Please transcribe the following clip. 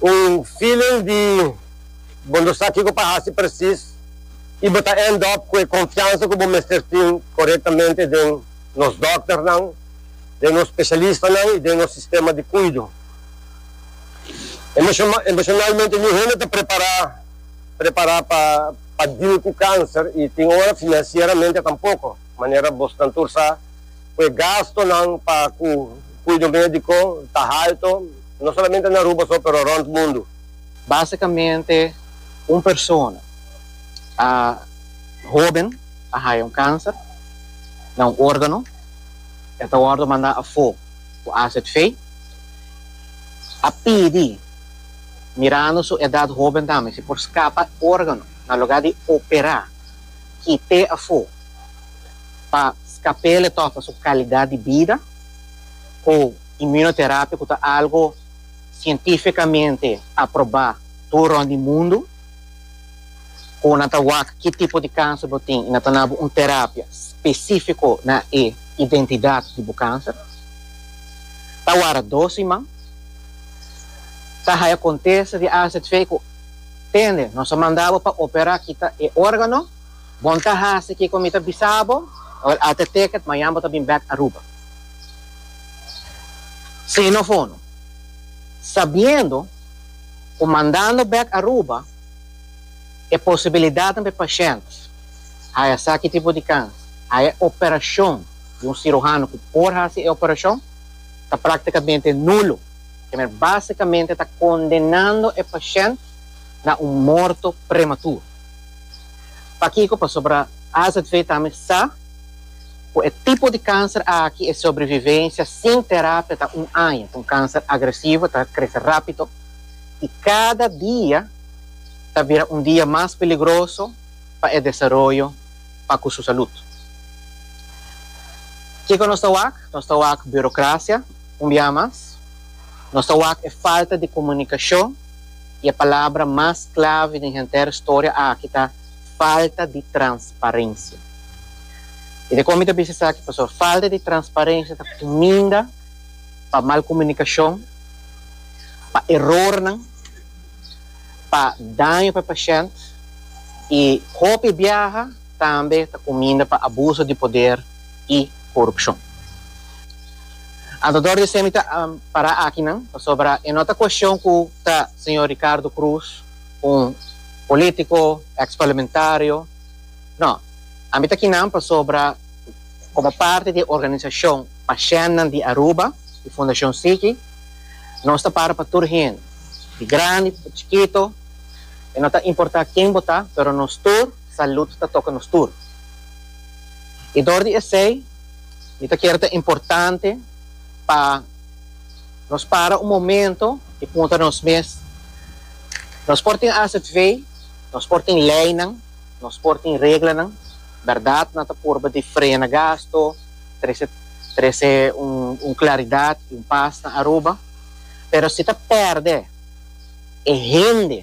Un feeling di bo no sa kiko pa hasi presis y bo ta end up cu e confiansa cu bo mester tin corectamente den nos dokternan, den nos specialistanan y den nos sistema di cuido. Emocionalmente ni hende ta prepara prepara pa pa deal cu cancer y tin ora financieramente tampoco, manera bosnan tur sa cu e gastonan pa cu cuido medico ta halto. No solamente na Aruba so pero rond mundo. Basicamente un persona a hoben a haya un cancer na un organo e ta wordo manda afo cu acid fe a pidi mirando su edad hoben tambe si por scapa organo na lugar di opera kite afo pa scapele toca su calidad di bida cu Imunoterapia ku ta algu sientifikamente aprobá tur rònt di mundu, ku nan ta wak ki tipo di kanser bo tin i nan ta na bo un terapia spesífiko na e identidat di bo kanser. Ta wara dos siman. Ta haya kontesta di AZV ku, Tende, nos a manda bo pa operá kita e órgano. Bon ta hasi kiko mi ta bisa bo. Awor el alte teket, mañan bo ta bin bèk Aruba. Xenofono, Sabiendo cu mandando bek Aruba e posibilidadnan pa e pashent haya esaki tipo di kans haya e operacion di un siruhano cu por haci e operacion ta practicamente nulo, Temer basicamente ta condenando e pashent na un morto prematuro. Pakico? Pasobra AZV tambe sa. Ku e tipo di kanser aki e sobrevivensia sin terapia ta un aña, ku un kanser agresivo ta krese rápido i kada dia ta bira un dia mas peligroso pa e desaroyo pa ku su salud. Kiko nos ta wak? Nos ta wak burokrasia un bia mas, nos ta wak e falta di komunikashon i e palabra mas klave den henter storia aki ta, falta di transparensia. I te kon mi ta bisa esaki pasobra falta di transparensia ta kuminda pa mal komunikashon, pa erornan, pa daño pa e pashènt i hopi biaha tambe ta kuminda pa abuso di poder i korupshon. Anto dor di esei mi ta para akinan pasobra e no ta kueshon ku ta señor Ricardo Cruz, un politico ex parlamentario no ami ta kinan pasobra como parti di e organisacion Pashennan di Aruba di Fundacion Siki nos ta para pa tur hende di grandi di chikito y no ta importa ken bo ta pero nos tur salud ta toca nos tur y dor di esey mi ta kere ta importante pa. Nos para un momento i puntra nos mes, Nos por tin azv, nos por tin leinan, nos por tin reglanan? Bèrdat nan ta purba di frena gasto, trese trese un un klaridat i un pas na Aruba? Pero si ta pèrdè e hende.